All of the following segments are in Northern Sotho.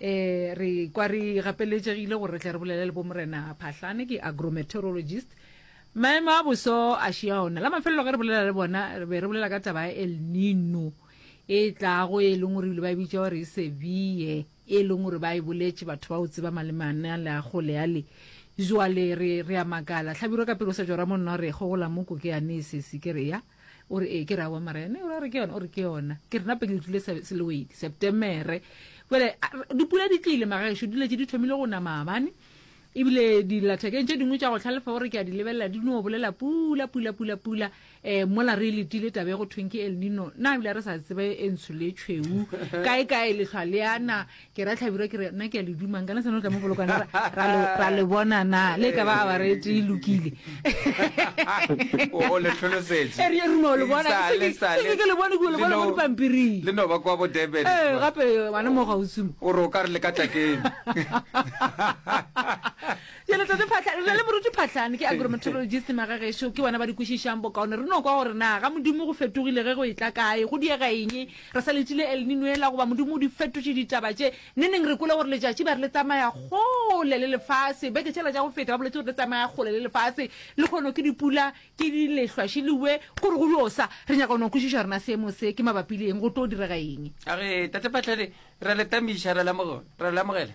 Ee, re kwa re gapeletšegile gore re tle re bolele le Bomorena Phahlane, ke agrometeorologist. Maemo a boso a šia ona. La mafelelo ge re bolela le bona, re be re bolela ka taba ya El Nino e tlago, e leng gore ebile ba e bitša gore e Seville, e leng gore ba e boletše batho ba o tseba malemane ale a kgole ale. Joale re, re a makala. Hlabirwa ka pelo o sa tšora mo nna o re, Kgogola moko ke yane e sesi, ke re, Ya. o re ee ke re awa mara ene o re a re ke yona o re ke yona ke re nape ke utlwile se- selewedi septemere bjale a- re- dipula di tlile magaešo di letse di thomile go na maabane ebile dilathekeng tše dingwe tša go tlhalefa o re ke a di lebelela di no bolela pula pula pula pula um mola re e letile tabe go thweng ke el nino na ebile re sa tsebe e ntsho le tšhweu kae kae lehlwa le yana ke ra tlhabirwa ke re nna ke a le dumang kana seno tla mo bolokana ra- ra le- ra le bona na le ka ba a barete e lokile O- o le hlolosetše. E re- e re no le bona. Sa le, sa le. Seke ke le bone, ke le bona mo Leno- dipampiring. le no ba kwa bo Durban. ee gape bana mo gausimo o re o ka re le ka tlakeng jale tate phatlha re na le moruti phatlhane ke agrometeorologist magagešo ke bona ba di kwešišang bokaone re no kwa gore na ga modimo go fetogile ge go e tla kae go diega eng Re sa letile El Nino yela goba Modimo o di fetotše ditaba tše. Neneng re kwele gore letšatši ba re le tsamaya kgole le lefase. Beke tšela tša go feta ba boletše gore le tsamaya kgole le lefase. Lekgono ke dipula, ke di lehlwa še le we. Gore go yo sa. Re nyaka go no kwešiša rena seemo se ke mabapi le eng, go tlo direga eng. A re, Tate Phatlhele, re a le tamiša, re a le amogela.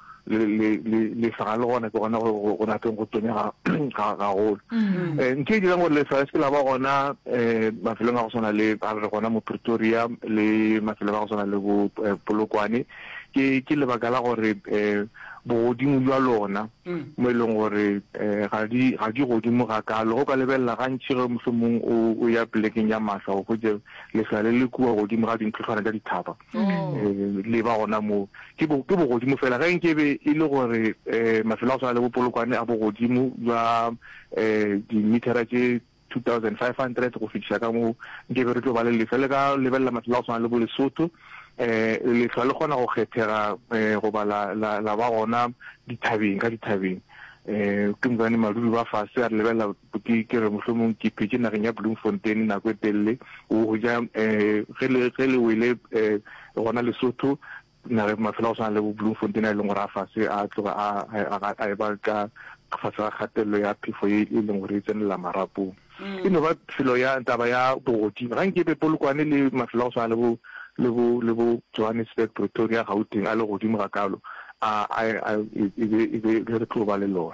lesaga le gona ke gona go rateng go tonya gagolo mm. eh, ntho e dirang gore lesaga se ke la ba gona um mafelong a go tshwana le a re gona mo pretoria le mafelong a go tshwana le bo eh, polokwane ke lebaka la gore um bogodimo jwa lona mm. mo e leng gore um ga di godimo ga kalo go ka lebelela gantšhi ge mohlomong o ya plekeng ya masa go kgwetse lesale le kua godimo ga dintlhotlhwana tsa dithaba le ba gona moo ke bo ke bogodimo fela ge nke be e le gore eh mafelo a go tshwana le bopolokwane a bogodimo jwa eh dimithara tše 2500 go fihla ka moo nke be re tlo ba le lefa le ka lebelela mafelo a go tshwana le bolesotho eh lehlwa le kgona go kgethega eh goba la la ba gona dithabeng ka dithabeng eh ke mokane madudi ba fase a re lebelela Ke, ke re mohlomong ke phetše nageng ya Bloemfontein nako e telele, o go ja um ge le, ge le wele um gona Lesotho, nageng mafelo a go swana le bo Bloemfontein a e leng gore a fase a tloga a, a, a, a eba ka fase ga kgatelelo ya phefo e, e leng gore e tsenelela marapong. E no ba felo ya, taba ya bogodimo. Ga nke be Polokwane le mafelo a go swana le bo, le bo, le bo Johannesburg, Pretoria, Gauteng a le godimo gakaalo, a, a, a, e be, e be le re tlo ba le lona.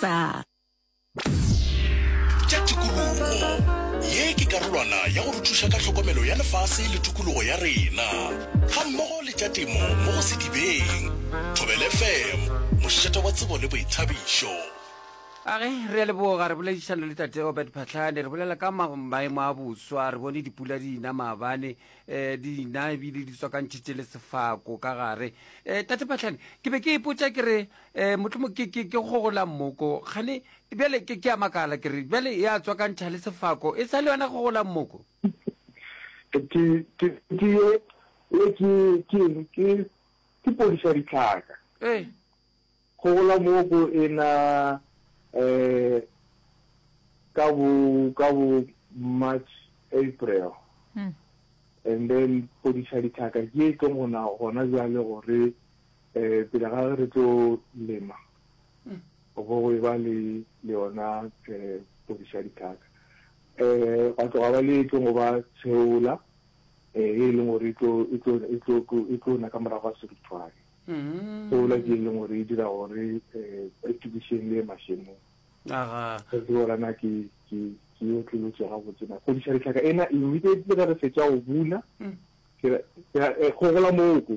sa tša tikologo ye ke karolwana ya go re thuša ka tlhokomelo ya lefase le tikologo ya rena ga mmogo le tša temo mo go sedibeng thobele fm mošeta wa tsebo le boithabišo Age, re a leboga re boledišana le tate Obert Phatlhane re bolela ka ma- maemo a boswa re bone dipula di ina maabane um di ina ebile di tswakantšhitše le sefako ka gare um tate Phatlhane ke be ke ipotša ke re um motlhomo ke ke ke gogola mmoko gane bjale ke ke a makala ke re bjale ya tswakantšha le sefako e sa le yona gogola mmoko ke ke ke ke ye ye ke ke eng ke ke podiša ditlhaka ee gogola mmoko e na um ka bo ka bo march april and then podiša ditlhaka ke e tlong gona gona bjale gore Eh, pele ga re tlo lema go bo go ba le le yona eh podiša dithaka eh ga tloga ba le e tlo ba tsheola eh e leng gore e tlo e tlo e tlo e tlo na ka morago ga serithwane mm. tsheola ke e leng gore e dira gore eh e tukišeng le mashemo aga re tlo rana ke ke ke yo tlolotse ga botse na podiša dithaka ena e mme ke re fetsa go bula mm. ke re go gola moko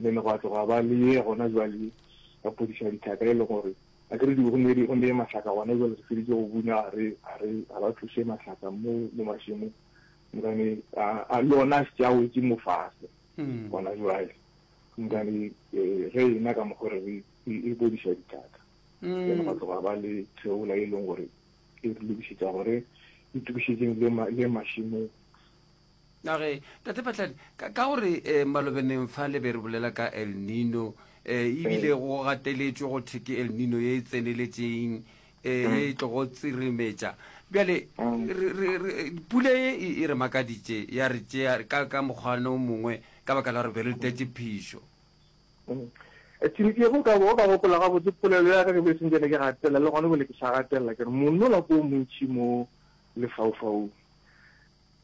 Mme ne gwa tloga ba le ye gona jwale ba phodiša dithaka e le gore a ke re di onedi onde mahlaka gona jwale re feditše go buna a re a re a ba tloše mahlaka mo mo mašemo mokane a a lona tša wetše mo fase gona jwale mokane ge ena ka mokgwa re re e phodiša dithaka ene gwa tloga ba le theola e leng gore e re lokišetša gore itukišetseng le mašemo Na ge, Tate Patladi, ka, ka gore eh, malobeneng fa le be re bolela ka El Nino, eh, e bile go gateletšwe go thwe ke El Nino ye e tseneletšeng, eh, ye e tlogo tsirimetša. Bjale, Mm. re, re, re, pula ye e, e re makaditše, ya re tšea ka, ka mokgwana o mongwe, ka baka la gore be re tlwetše phišo. Mm. Eh, Tšhiliki ye, go ka bo, o ka gopola gabotse polelo ya ka, ke be se ntše ne ke gatelela, le gona bjale ke sa gatelela, ke re, monola ke o montši mo lefaufaung.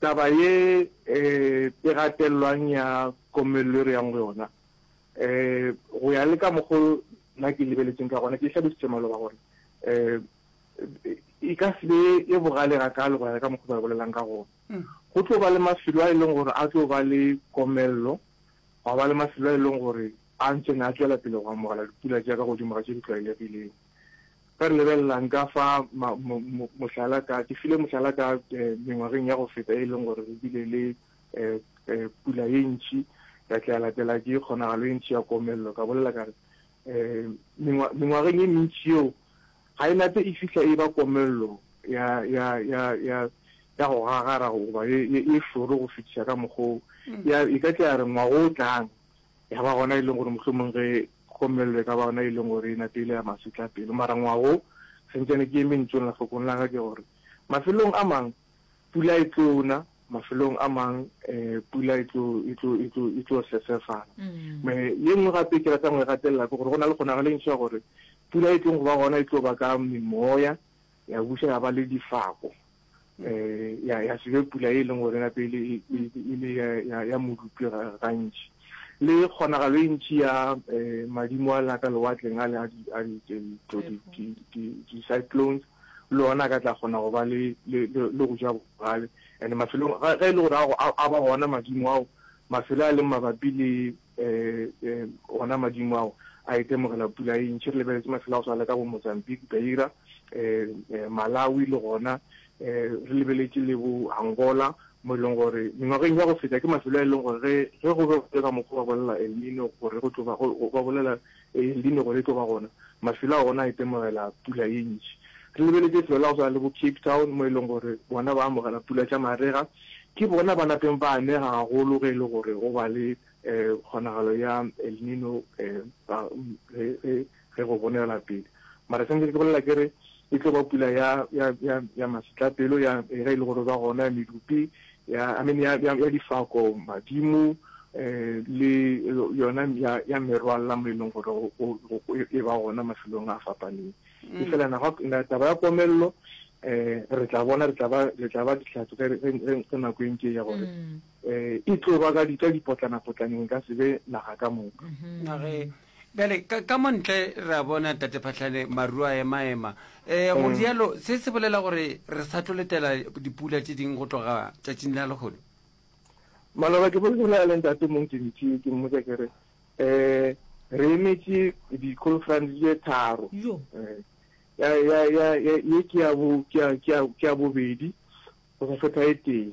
Taba ye e gatelelwang ya komello e re yang go yona, go ya le ka mokgwa o nna ke e lebeletseng ka gona, ke e hlalositše maloba gore e ka se be e bogale gakaalo go ya le ka mokgwa o ba e bolelang ka gona. Go tlo ba le mafelo a e leng gore a tlo ba le komello, gwa ba le mafelo a e leng gore a ntše a tšwela pele go amogela dipula tša ka godimo ga tše di tlwaelegilego. Ge re lebelela nka fa mohlala ka, ke file mohlala ka mengwageng ya go feta e leng gore re bile le pula ye ntši, ya tla ya latela ke kgonagalo e ntši ya komello. Ka bolela ka re mengwageng ye mentši yeo, ga e nate e fihla e ba komello ya go gagara goba ye šoro go fetiša ka mokgwa o. E ka tla ya re ngwaga o tlang, ya ba gona e leng gore mohlomong ge gomelelo e ka ba gona e leng gore e nateile ya masetla pelo mara ngwago sentšane ke eme ntšong la fokong la ka ke gore mafelong a mang pula e tlona mafelong a mang um pula e tlo e tlo e tlo e tlo sesefala mm. me ye nngwe gape ke ratang go e gatelela ke gore go na le kgonagalo e ntšha gore pula e tlong go ba gona e tlo ba ka memoya ya busa ya ba le difako ya ya se be pula e leng gore gape e le e, e, e le ya ya modupi gantši le kgonagalo e ntši ya eh, madimo a lena ka lewatleng a le a di-cyclones le ona ka tla kgona go ba le go ja bogale and mafelong ge e le gore a ba gona madimo ao mafelo a leng mabapi le Eh, ona madimo ao a itemogela pula e ntšhi re lebeletse mafelo a go sala ka bo mozambique beira eh, eh, malawi le gona eh, re lebeletse le bo angola mo e leng gore mengwageng ya go feta ke mafelo a e leng gore ge go be go ka mokgwa ba bolela elmino gore go tlo ba bolela Ee, Ledimo gore e tlo ba gona. Mafelo a gona a itemogela pula ye ntši. Re lebeletše lefelo la go swana le bo Cape Town, mo e lego gore bona ba amogela pula tša marega. Ke bona ba napeng ba anega gagolo ge e le gore go ba le kgonagalo ya El Nino ge go bonegela pele. Mara se ntse ke bolela ke re e tlo ba pula ya ya ya ya masitlapelo ya e re le gore ba gona ya medupi ya I mean ya ya difako madimo eh le yona ya ya merwalla mo e leng gore go e ba gona mafelong a fapaneng mm. e fela na ga na taba ya komello eh re tla bona re tla ba re tla ba ditlhatso re re re nako e ntse ya gore mm. eh e tlo ba ka ditla dipotlana potlaneng ka sebe naga ka moka mm-hmm. Bjale, ka, ka mo ntle re a bona, Tate Phahlane, maru a ema-ema. Ee, go rialo, se se bolela gore re sa tlo letela dipula tše ding go tloga tšatšing la lehono. Maloba, ke bolela le Ntate Montši-ntši, ke mmotša ke re, Ee, re emetše di-conference tše tharo. Yo. Ya, ya, ya, ya, ye ke ya bo, ke ya, ke ya, ke ya bobedi go sa fetha e tee.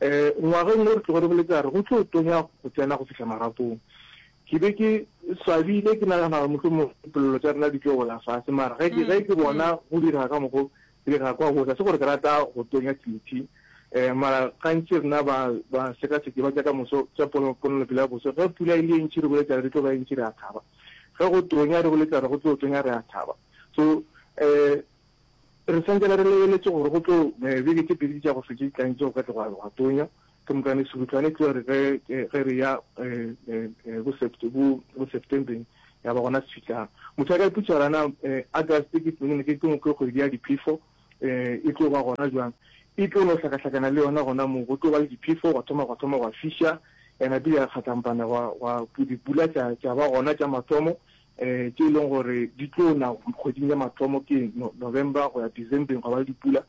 Ngwageng wo re tlogo re boletše a re go tlo tonya go tsena go fihla marapong. Ke be ke swabile ke nagana gore mohlomongwe dipolelo tša rena di tlo wela fase mara ge ke ge ke bona go direga ka mokgo di direga kwa gohle. Ga se gore ke rata go tonya Tlinity mara gantši rena ba ba sekaseki ba tša ka moso tša pono ponelopele ya boso ge pula e le e ntši re boletša re di tlo ba e ntši re a thaba ge go tonya re boletša re go tlo tonya re a thaba so Re swantse la re lebeletše gore go tlo beke tše pedi tša go fetša di tlanetše go ka tloga gwa tonya ke mokane Serutlwane e tlo re ge ge re ya bo sept bo bo Septembeng ya ba gona se fihlang. Motho a ka ipotša gore ana August ke ke ke ke kgwedi ya diphefo e tlo ba gona jwang. E tlo no hlakahlakana le yona gona moo go tlo ba le diphefo gwa thoma gwa thoma gwa fiša and-e bile ya kgatlampana gwa gwa dipula tša tša ba gona tša mathomo tše e leng gore di tlo na kgweding ya mathomo ke November go ya Decembeng go ba le dipula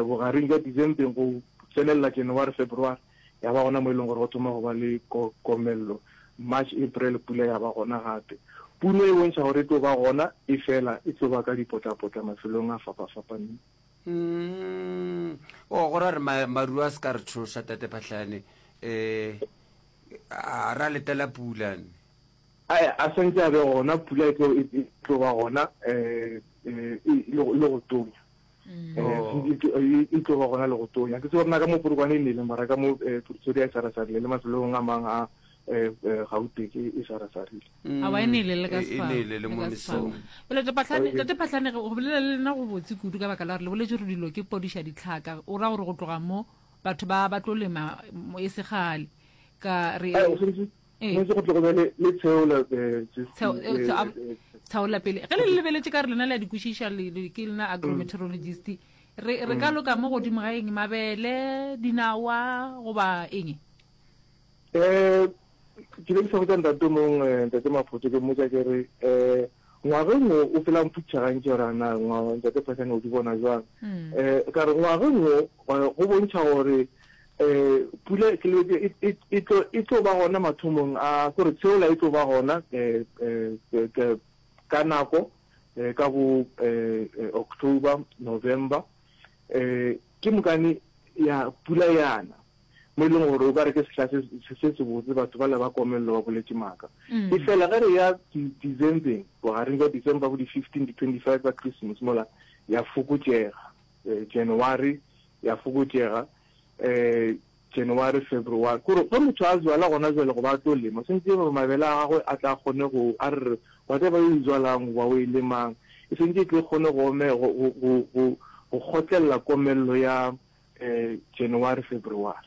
bogareng bja Decembeng go tsenelela January February ya ba gona mo e leng gore go thoma go ba le komello March April pula ya ba gona gape puno e bontšha gore e tlo ba gona e fela e tlo ba ka dipotlapotla mafelong a fapafapaneng mm. o oh, go ra re maru a se ka re thoša tate phatlhane um a ra letela pulane A e a santse a be gona, pula e tlo e tlo ba gona e le go tonya. E tlo ba gona le go tonya. Ke tseba rena ka mo Polokwane e nele mara ka mo Pretoria e sarasarile le mafelong a mang a Gauteng e sarasarile. Aowa e nele le ka sefala. E nele le mo mesong. Bjale Tate Phahlane, Tate Phahlane go bolela le lena go botse kudu ka baka la gore le boletše gore dilo ke podiša ditlhaka. O ra gore go tloga mo batho ba ba tlo lema e se kgale ka re. tshwanetse go tlogo bjale le tsheola tsheola pele ge le le lebeletse ka re lena le a di kwešiša ke lena mm. agrometeorologist re re ka mm. loka mo godimo ga eng mabele dinawa goba eng um ke be ke sa botsa ntate mongwe eh, ntate mafoto ke mmotsa ke re um ngwaga nngwe o felang phutšha gantsi gore ana ntate phasane o di bona jwang um ka re ngwaga nngwe go bontšha gore Pula e tlo ba gona mathomong a gore tsheola e tlo ba gona ka nako ka bo October, November. Ke mokane ya pula yana mo e leng gore o ka re ke sehla se se botse batho ba le ba komelelo ba boletse maaka. E fela ge re ya December-eng bogareng jwa December bo di-fifteen, di-twenty-five ka Christmas mola ya fokotšega January. ya fokotšega January, February. Kore ge motho a zwala gona jwale goba a tlo lema, swantše gore mabele a gagwe a tla kgone go, a re re whatever yo e zwalang goba o e lemang, e swantše e tle e kgone go ome, go, go, go, go, go kgotlelela komello ya January, February.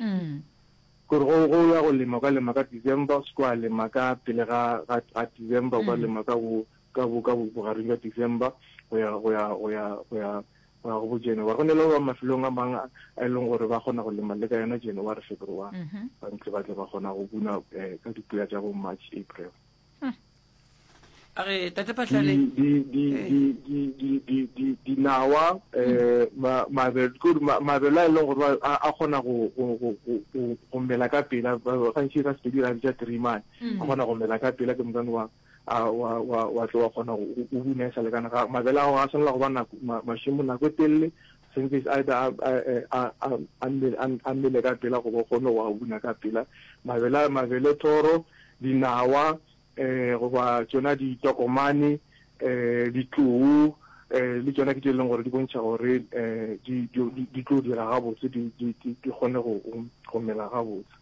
Kore ge o ya go lema, o ka lema ka December, o se ke wa lema ka pele ga, ga, ga December, o ka lema ka bo, ka bo, ka bo, bogareng bja December go ya, go ya, go ya, go ya, Wa go botša yena, wa go nela ba mafelong a mang a e leng gore ba kgona go lema le ka yona January, February. Mhm. Ba ntse ba tle ba kgona go buna eh, ka dipula tša bo March, April. a re tate phatlale Di- di- di- Eh. di- di- di- di- di- dinawa um mabele ke gore ma- mabele a e leng gore ba- a a kgona go go- go- go- go- go mela ka pela ba- ba- gantši ka sepedi ra bitša trimane a kgona go mela ka pela ke mokane wa wa tlo wa kgona gore o bune e sa lekane ga mabele a ga tshwanela go ba nako mašimo nako e telele sentse either a mmele ka pela go bo kgone go a buna ka pela mabele mabele thoro dinawa um goba tsona ditokomane um ditlou um le tsona ke tse e leng gore di bontšha gore um di tlo dira gabotse di kgone go mela gabotse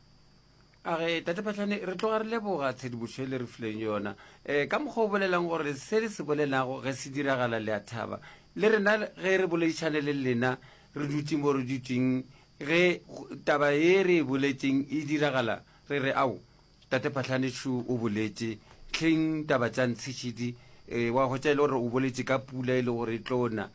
a re tate phatlhane re tloga re leboga tshedimošo e le re fileng yona um ka mokgwa o bolelang gore se le se bolelago ge se diragala le a thaba le rena ge re boledišane le lena re dutse mo re dutseng ge taba ye re e boletseng e diragala re re ao tate phatlhane šo o boletse tlheng taba tša ntshešidi um wa go tša e le gore o boletse ka pula e le gore e tlona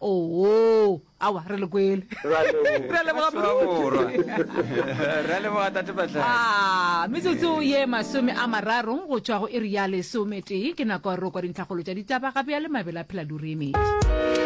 Oo, awa re le kwele Re a leboga. Re a leboga Batho ba moruti. borwa re a leboga tate batlhaki Ah, metsotso ye masome a mararo go tšwa go iri ya lesometee ke nako ya roko dintlhakgolo tša ditaba gape ya le mabele a phela lurimi